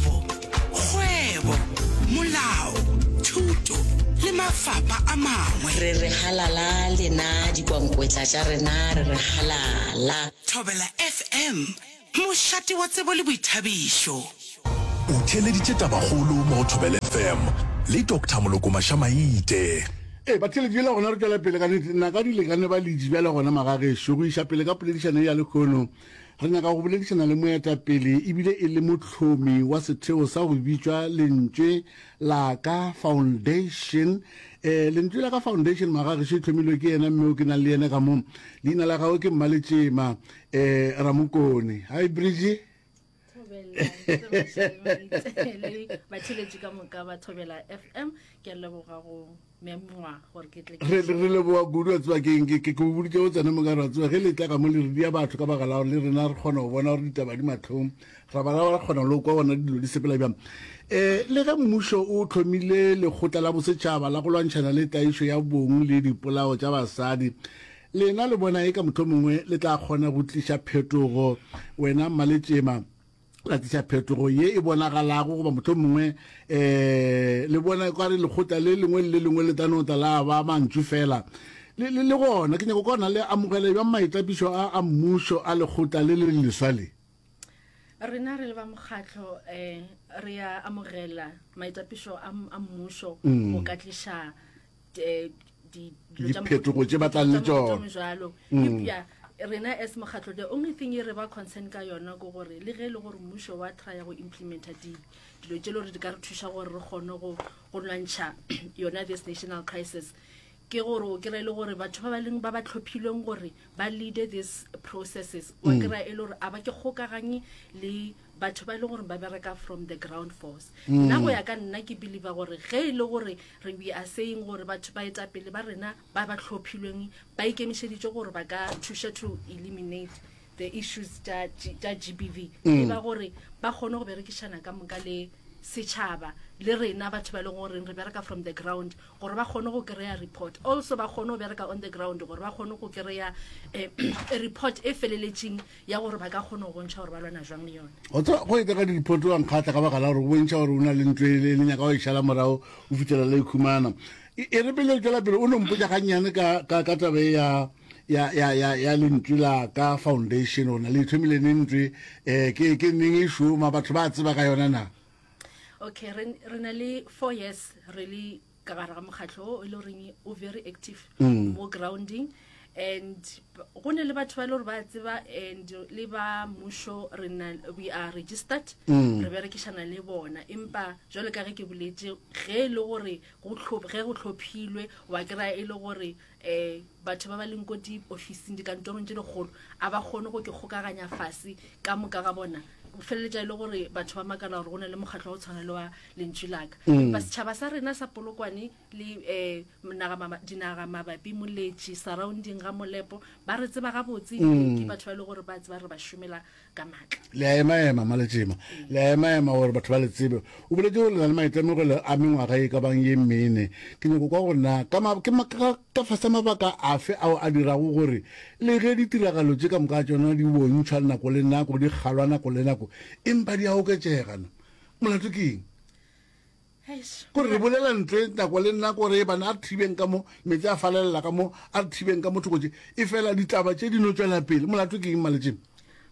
kgwebo, molao, thuto le mafapa a mangwe. Re re halala lena dikwankwetla tša rena re re halala. Thobela FM, mošate wa tsebo le boithabišo. O theeleditše tabakgolo mo go Thobela FM le Doctor Moloko Mašamaite. Ee, Batheeletši, bjale gona re tšwela pele ka nnete. Naka di lekane ba le itše bjale gona magagešo go iša pele ka poledišano ye ya lehono. Re nyaka go boledišana le moetapele e bile e le mohlomi wa setheo sa go bitšwa Lentšwe la ka Foundation. E, Lentšwe la ka Foundation magagešo e tlhomilwe ke yena mme o ke nang le yena ka mo. Leina la gagwe ke Mmaletšema e, Ramokone. Hi Bridgie. thobela le batheletši ka moka ba thobela fm ke a leboga go memngwa gore ke tle re re leboga kudu a tseba keng ke ke go boditse go tsena mokare wa tseba ge le tla ka mo le re dia batho ka baka la gore le rena re kgona go bona gore ditaba di mathong ra bala ra kgona le go kwa bona dilo di sepela bjang eh le ge mmušo o tlhomile lekgotla la bosetšhaba la go lwantšhana le taišo ya bong le dipolao tša basadi Lena le bona eka mohlomongwe le tla kgona go tliša phetogo. Wena mmaletšema, la tliša phetogo ye e bonagalago, goba mohlomongwe e, le bona ekare lekgotla le lengwe le le lengwe le tla no tla la ba mantšu fela. Le, le, le gona, ke nyaka go kona le amogele bjang maitapišo a, a mmušo a lekgotla le le leswa le. Rena re le ba mokgatlo e, re a amogela maitapišo a, a mmušo go ka tliša eh, diphetogo tše ba tlang le tsona mm. rena as mokgatlho the only thing e re ba concern ka yona ko gore le ge e le gore mmušo wa trya go implementa dilo tše le gore di ka re thuša gore re kgone go lwantšha yona this national crisis ke gore o kry-e le gore batho ba ba leng ba ba tlhophilweng gore ba leade these processes o mm. kry-e le gore a ba ke kgokaganye le batho ba e le gore ba bereka from the ground force mm. nna go ya ka nna ke believer gore ge e le gore re we are saying gore batho ba eta pele ba rena ba ba tlhophilweng ba ikemišeditše gore ba ka thuša to eliminate the issues tša g b v mm. e ba gore ba kgone go berekišana ka moka le setšhaba le rena batho ba e leng goreng re bereka from the ground gore ba kgone go kry-a report also ba kgone go bereka on the ground gore ba kgone go kry-a eh, report e feleletšeng ya gore ba ka kgona go bontšha gore ba lwana jwang le yone o tswa go eteka di-report wa nkgatla ka baka la gore o bontšha gore o na le ntlo ele le nyaka go e šala morago o fitlhela le khumana e, e re pele o tswela pele o no mpotsa gannyane ka tabe e ya ya ya ya ya lentswe la ka foundation o na le ithomile ne ntswe eh ke ke neng e shuma batho ba tseba ka yona na okay re re na le 4 years re le ka gare ga mokgatlho o e le goreng o very active mm. mo grounding and go ne le batho ba e le gore ba tseba and le ba mmušo we are registered mm. re berekišana le bona empa jalo ka ge ke boletse ge e le gore ge go tlhophilwe wa kry-a e le gore Ee, batho ba ba leng ko diofising, dikantorong tše dikgolo, a ba kgone go ke kgokaganya fase ka moka ga bona. Go feleletša e le gore batho ba makala gore go na le mokgatlo wa go tshwana le wa Lentšu la Ka. Empa setšhaba sa rena sa Polokwane le um naga maba, dinaga mabapi, Moletši, surrounding ga Molepo, ba re tseba gabotse ebile ke batho ba e lego gore ba tseba re ba šomela ka maatla. Le a emaema, Mmaletšema, le a emaema gore batho ba le tsebe. O boletše gore le na le maitemogelo a mengwaga e ka bang ye mene. Ke nyako kwa gore na ka ma, ke ma, ka, ka fase mabaka afe ao a dirago gore le ge ditiragalo tše ka moka tšona di bontšhwa nako le nako, di kgalwa nako le nako, empa di a oketšega na? Molato ke eng? Gore re bolela ntwe nako le nna gore e bana a re thibeng ka mo, metse a falelela ka mo, a re thibeng ka mo thoko tše. E fela ditaba tše di no tšwela pele. Molato ke eng, Maletšeng?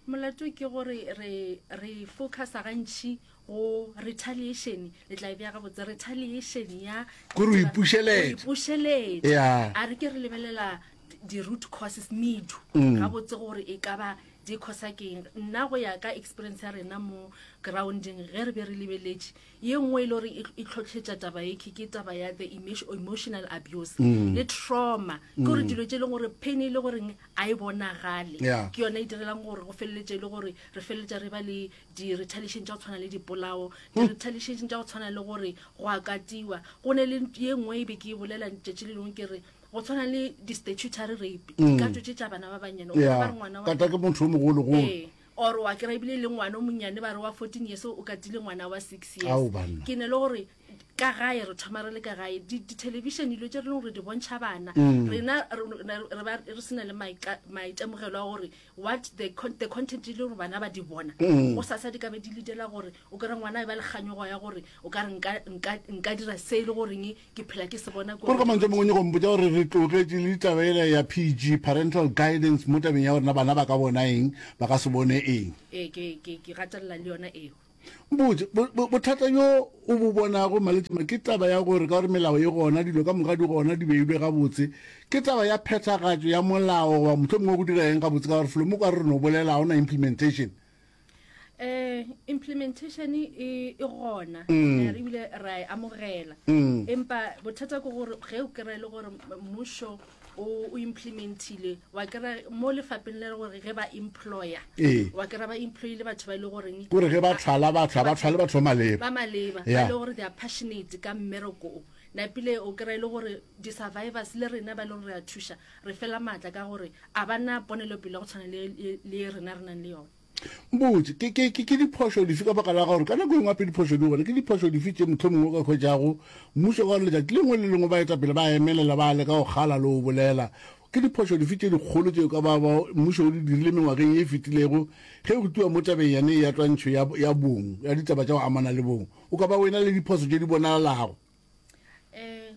Molato ke gore re re focusa gantši go retaliation, le tla e bea gabotse, retaliation ya Gore o ipušeleta. Go ipušeleta. Yeah. A re ke re lebelela di- di-root causes medu Mm. gabotse gore e ka ba di khosa keng nna go ya ka experience ya rena mo grounding ge re be re lebeletše ye nngwe e le gore e, e tlhotlhetša taba e ke taba ya the emotional abuse mm. le trauma ke gore mm. dilo tse e leng gore pain e le goreng a e bonagale ke yone e direlang gore go feleletse e le gore re feleletsa re ba le di-retaliation tsa go tshwana le dipolao hmm. di-retaliation tsa go tshwana le gore go akatiwa go ne le ye nngwe e be ke e bolela tšatši le lengwe ke re go tshwana le di-statutory rape hmm. dikatso tse tsa bana ba bannyane ba re ngwana kata ke motho o mogologolo ee. Or wa kry ebile le ngwana o monnyane ba re wa 14 years o katile ngwana wa six Ao, years banna. ke ne le gore ka gae re thoma re le ka gae Di- ditelevision dilo tse re leng gore di bontšha bana Mm. rena re- re- re ba- re sena le maika- maitemogelo a gore what the con- the content e le gore bana ba di bona Mm. go sasa di ka be di ledela gore o kry ngwana e ba le kganyogo ya gore o ka re nka- nka nka dira se e le goreng ke phela ke se bona gore ka mantse a mangwe nyego mpotsa gore re tlogetše le ditaba ela ya pg parental guidance mo tabeng ya gorena bana ba ka bona eng ba ka se bone eng ee ke ke ke gatelela le yona eo mpotse bo- bo- bothata yo o bo bonago maletšema ke taba ya gore ka gore melao e gona dilo ka moka di gona di beilwe gabotse ke taba ya phethagatšo ya molao goba mohlomongwe go dira eng gabotse ka gore folomo kwa re no bolela ga ona implementation eh implementation e e gona mm. re bile ra e amogela mm. empa bothata ke gore ge o kry le gore mmušo o implementile wa kry mo lefapeng le gore ge ba employer ee. wa kry ba employe le batho ba e le goreng kore ge ba tlhala ba tlha ba tlhale batho ba maleba ba maleba ba e le gore they are passionate ka mmereko napile o kry le gore di-survivors le rena ba e le gore re a thuša re fela maatla ka gore a ba na ponelopele ya go tshwana le, le, le ye rena re nang le yona. Mpotše, ke, ke, ke, ke diphošo dife ka baka la gore ka nako e nngwe gape diphošo di gona, ke diphošo dife tše mohlomongwe o ka hwetšago Mmušo ka gore letšatši le lengwe le le lengwe baetapele ba emelela ba leka go kgala le go bolela? Ke diphošo dife tše dikgolo tše o ka ba, ba Mmušo o di dirile mengwageng ye e fetilego ge go tliwa mo tabeng yane ye ya twantšho ya, ya bong, ya ditaba tša go amana le bong? O ka ba o ena le diphoso tše di bonalalago? Ee,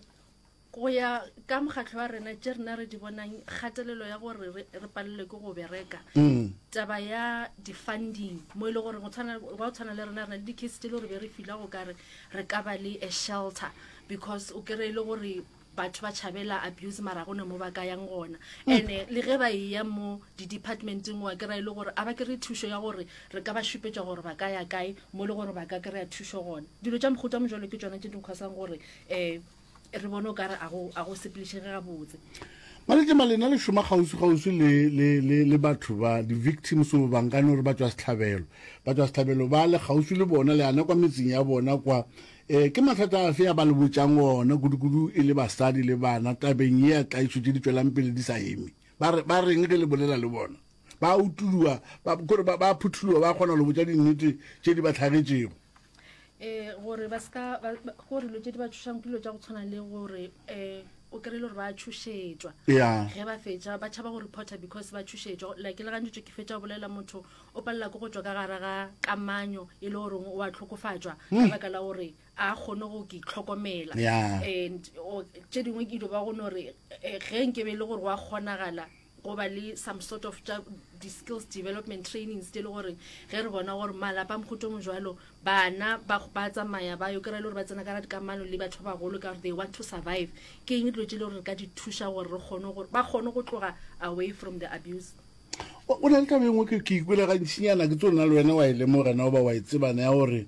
Go ya ka mokgatlho wa rena, tše rena re di bonang, kgatelelo ya gore re, re palelwe ke go bereka, mm. taba ya di-funding mo e le gore go tshwana le rena re na le di-case tse le gore be re fila go kare re ka ba le a shelter because o kry-e le gore batho ba tšhabela abuse mara gone mo ba ka yang gona mm. and eh, le ge ba e ya mo di-departmenteng wa kry e le gore a ba kry thušo ya gore re ka ba šupetša gore ba ka ya kae mo e le gore ba ka kry-a thušo gona dilo tša mogote wa mojalo ke tsona tše di nkgwasang gore um re bone o kare a go a go sepelešege gabotse malete malena le šoma kgauswi kgauswi le le le le batho ba di victims o bang ka no re ba tswa setlhabelo ba tswa setlhabelo ba le kgauswi le bona le ana kwa metseng ya bona kwa eh ke mathata a fe a ba le botsang ona kudu kudu e le basadi le bana tabeng ye ya tlaiso tse di tswelang pele di sa eme ba re ba reng ge le bolela le bona ba utuloa ba gore ba ba phuthuloa ba kgona le botsa dinnete tse di ba tlhagetšego um gore ba seka gore dilo tse di ba tšhošang ke dilo tša go tshwana le gore um o kry-ile gore ba tšhošetšwa ge ba fetša ba tšhaba go reporter because ba tšhošetšwa like le gantšitšo ke fetša go bolela motho o palela ke go tswa ka gara ga kamanyo e le goreng o a tlhokofatšwa ka hmm. baka la gore a kgone go ke itlhokomela and tše dingwe ke dio ba gone gore eh, ge nke be e le gore wa kgonagala go ba le some sort of tša di-skills development trainings tse le gore ge re bona gore malapa a mogoto mo jalo bana ba tsamaya ba yo kry-e le gore ba tsena kara dikamano le batho ba bagolo ka gore they want to survive ke eng dilo tse le gore re ka di thuša gore re kgone gore ba kgone go tloga away from the abuse o na le taba engwe ke ikole gantšinyana ke tso nna le wena wa e lemogana o ba wa e tsebana ya gore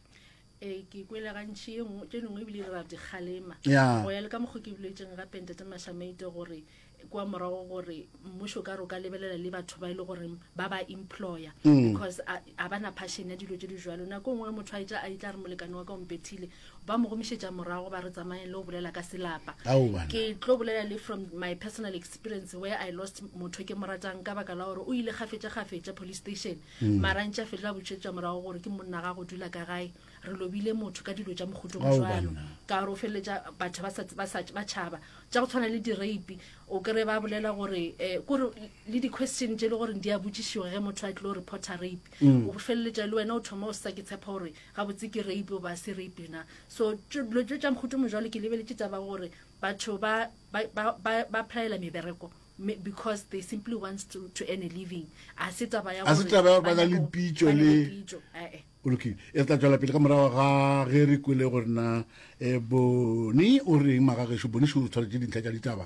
ee ke kwele gantšhi e nngwe tše dingwe ebile di ra dikgalema go ya le ka mokgwa ke boletseng gape ntate mashameite gore kwa morago gore mmušo ka re o ka lebelela le batho ba e le goreng ba ba employer mm. because a ba na passion ya dilo tse di jalo nako e nngwe motho a itla a itla re molekane wa ka ompethile ba mo gomišetša morago ba re tsamaye le go bolela ka selapa ke tlo bolela le from my personal experience where i lost motho ke mo ratang ka baka la gore o ile gafetša gafetša police station mm. mara ntša fetlo a botšetša morago gore ke monna ga go dula ka gae re lobile motho ka dilo tša mokgotong jalo ka gore o feleletša batho ba tšhaba tša go tshwana le dirape o kry ba bolela gore um kore le di-question tše e le gore di a botšišiwa ge motho a tlilo reporter rape mm. o feleletša le wena o thoma o sa ke tshepa gore gabotse ke rape o ba se rape na so dilo tšo tša mokgotong jalo ke lebeletse taba gore batho ba phaela mebereko Because they simply wants to, to earn a living. A se taba ya gore ba na le pitšo le o lokile e tla tswela pele ka morago ga ge re kwele gore na eh, bone o reng magageso bone šoro tshwanetse dintlha tša ditaba